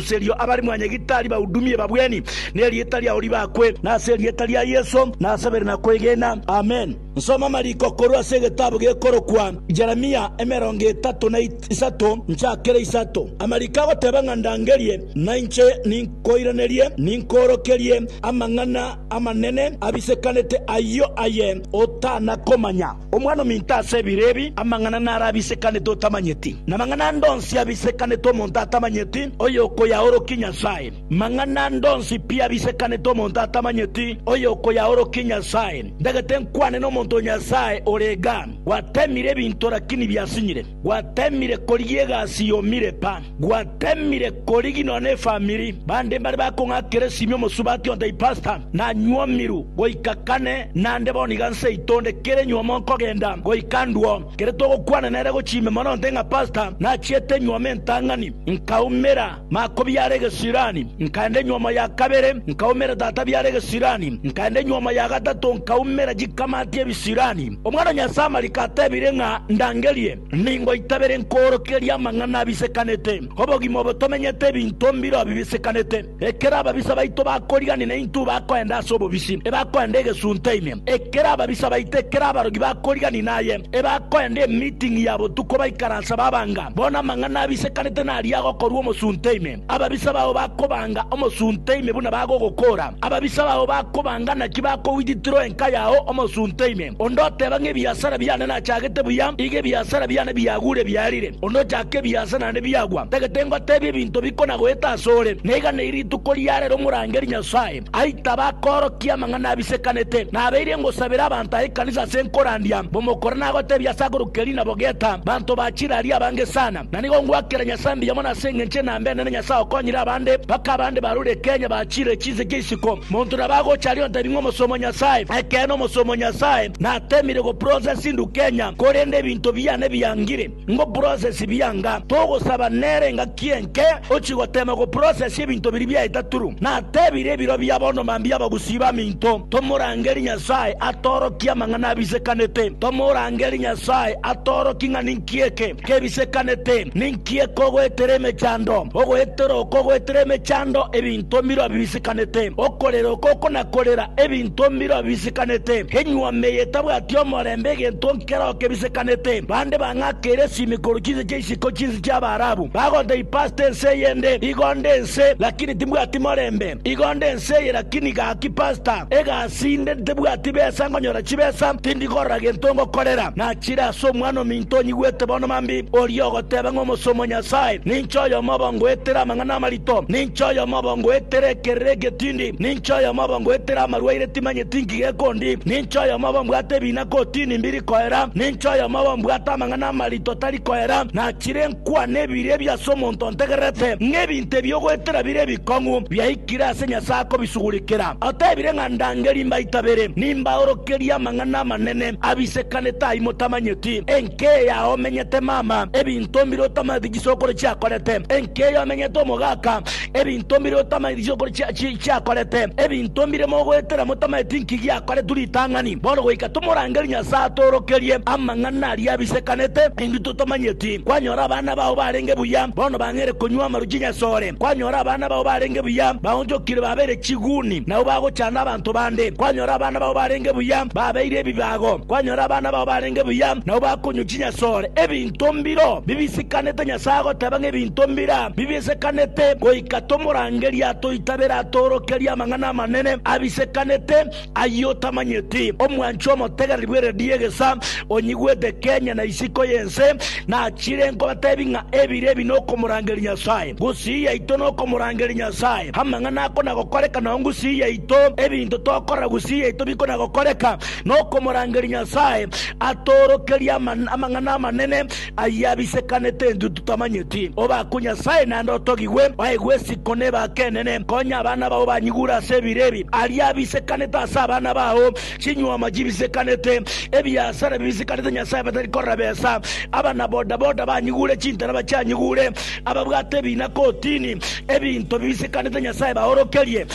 Erio abare mwanyegitari bahudumie babweni nerieta riao ribakwe, na ase erieta ria Yeso nasabere na kwegena. Amen. Nsoma amariko korwa ase egetabu gekorokwa Jeremia emerongo etato na isato nchakere isato. Amariko agoteba ng'a ndangerie, nainche ninkoiranerie, ninkoorokerie amang'ana amanene abisekanete ayio aye otanakomanya. Omwana ominto ase ebiro ebi amang'ana naro abisekanete otamanyeti, na amang'ana ande onsi abisekanete omonto atamanyeti, oyokoyaorokia Nyasae. Mang'ana ande onsi pi abisekanete omonto atamanyeti, oyokoyaorokia Nyasae. Ndagete nkwane nomonto Nyasae ore igaa, gwatemire ebinto, rakini biasinyire. Gwatemire korigia egasi yomire pa, gwatemire korigia nonya nefamiri bande mbare bakong'akera esimi omosubati onde ipasta nanywa omiru goika kane nande bono iga nse yaito onde kera enyuoma onkogenda goika ndwo kere togokwana nere gochimbe mono onde ng'a pasta nachiete enyuoma entang'ani nkaumera Makobiara egesirani, nkaenda enyomo ya kabere, nkaumera tatabiara egesirani, nkaenda enyomo ya gatato, nkaumera chikamati ebisirani. Omwana o Nyasae amariko atebire ng'a ndangerie, ningoita bere nkoorokeria amang'ana abisekanete, obogima obo tomenyete ebinto mbire oo bibisekanete. Ekero ababisa baito bakoriganigwa naintwe bakoenda ase obobisi, ebakoenda egesunte ime. Ekero ababisa baito, ekero abarogi bakoriganigwa naye, ebakoenda emeeting ya botuko baikaranse babanga. Bono amang'ana abisekanete naria agokorua omosunte ime. Ababisa bao bakobanga omosunte ime buna bagogokoora. Ababisa bao bakobanga naki bakogwititira enka yao omosunte ime. Onde oteba ng'a ebiasara biane nachagete buya, iga ebiasara biane biagure biarire. Onde ochaka ebiasara naende biagwa, tagete ngotebia ebinto bikonagoeta asore, naiga nai rituko riarero morangeri Nyasae. Ai tabakoorokia amang'ana abisekanete, nabeire ngosabera abanto aa ekanisa ase nkorandia mbomokore nagotebia ase akorwa Kerina bogeta banto ba chirari abange sana. Na nigo ngwakera Nyasae mbuya mono ase engencho enambe enene Nyasae okonyire abande mpaka abande barure Kenya bachire chinseche isiko. Monto nabo agocha aria ontebi ng'a omosomo Nyasae, ekeene omosomo Nyasae natemire go process ndu Kenya korende ebinto biane biangire. ngoprocess bianga togosaba nere engaki enke ochie goteema goprocess ebinto biria biaeta turu. Natebire ebiro bia bono mambia abagusii baminto tomorangerie Nyasae atorokie amang'ana abisekanete. Tomorangerie Nyasae atorokie ng'a ninki eke kebisekanete, ninki eke ogoetera emechando, ogoetera oko ogoetera emechando ebinto mbirobio bisekanete, okorera oko okonakorera ebinto mbirobio bisekanete, enyuoma eye etabwati omorembe egento Keroo kebisekanete, bande bang'akeire esimi korwa chinse chia isiko chinsi chi'Abaarabu, bagonta ipaste ense eyende, Igo nde ense, lakini timbwati morembe, igo nde ense eye, lakini gaki pasta, egasi inde, ntibwati besa ngonyora chibesa, tindi korora gento ngokorera. Nachire ase Omwana-o-minto onyigwete bono mambi, oria ogoteba ng'a Omosomo o Nyasae, ninche oyomo obo ngoetere amang'ana amarito, ninche oyomo obo ngoetere ekerero egetindi, ninche oyomo obo ngoetere amarwaire timanyeti inki gekondi, ninche oyomo obo mbwate ebina, Gotini mbiri koera, ninche oyomoba mbwate amang'ana amarito tari koera, nachire nkwane ebiiri ebi ase omonto ontegererete, ng'a ebinto ebi ogoetera bire ebikong'u biaikire ase Nyasae akobisugurikera. Otebire ng'a ndangerie mbaito abere, nimbaorokerie amang'ana amanene abisekanete ayio motamanyeti, Enkeyo yao omenyete mama, ebinto mbire otamanyeti chisokoro chiakorete, enkeyo omenyete omogaka, Ebinto mbire otamaeti chiokoro chiakorete? Ebinto mbire mogoetera motamaeti inki giakoretwe ritang'ani? Bono goika tomorangerie Nyasae atoorokerie amang'ana aria abisekanete, intwe totamanyeti. Kwanyora abana bao barenge buya, bono bang'eire konywa amaru chinyasore. Kwanyora abana bao barenge buya, baonchokire babeire chiguni, nabo bagochanda abanto bande. Kwanyora abana bao barenge buya, babeire ebibago. Kwanyora abana bao barenge buya, nabo bakonywa chinyasore. Ebinto. Ebinto mbiro bibisikanete Nyasae agoteba ng'a ebinto mbira bibisikanete, goika tomorangerie atoitabere atoorokerie amang'ana amanene abisikanete ayio otamanyeti? Omwanchwa omotegereri bw'eredio egesa onyigwete Kenya na isiko y'ense nachire nkobatebi ng'a ebire ebi nokomorangeria Nyasae. Ngusii yaito nokomorangeria Nyasae. Amang'ana akona gokoreka nao ngusii yaito. Ebinto tokorora gusii yaito bikona gokoreka. nokomorangeria Nyasae atoorokerie amang'ana amanene ayio abisekanete intwe totamanyeti. Obakwe Nyasae naende otogigwe baigwe isiko nebaake enene. Konya abana bao banyigure ase ebiro ebi aria abisekanete ase abana bao, chinyuoma chibisekanete, ebiasara bibisekanete Nyasae batari korora besa, abana bodaboda banyigure chintana bachianyigure, ababwate ebina kotini ebinto bibisekanete Nyasae baorokerie.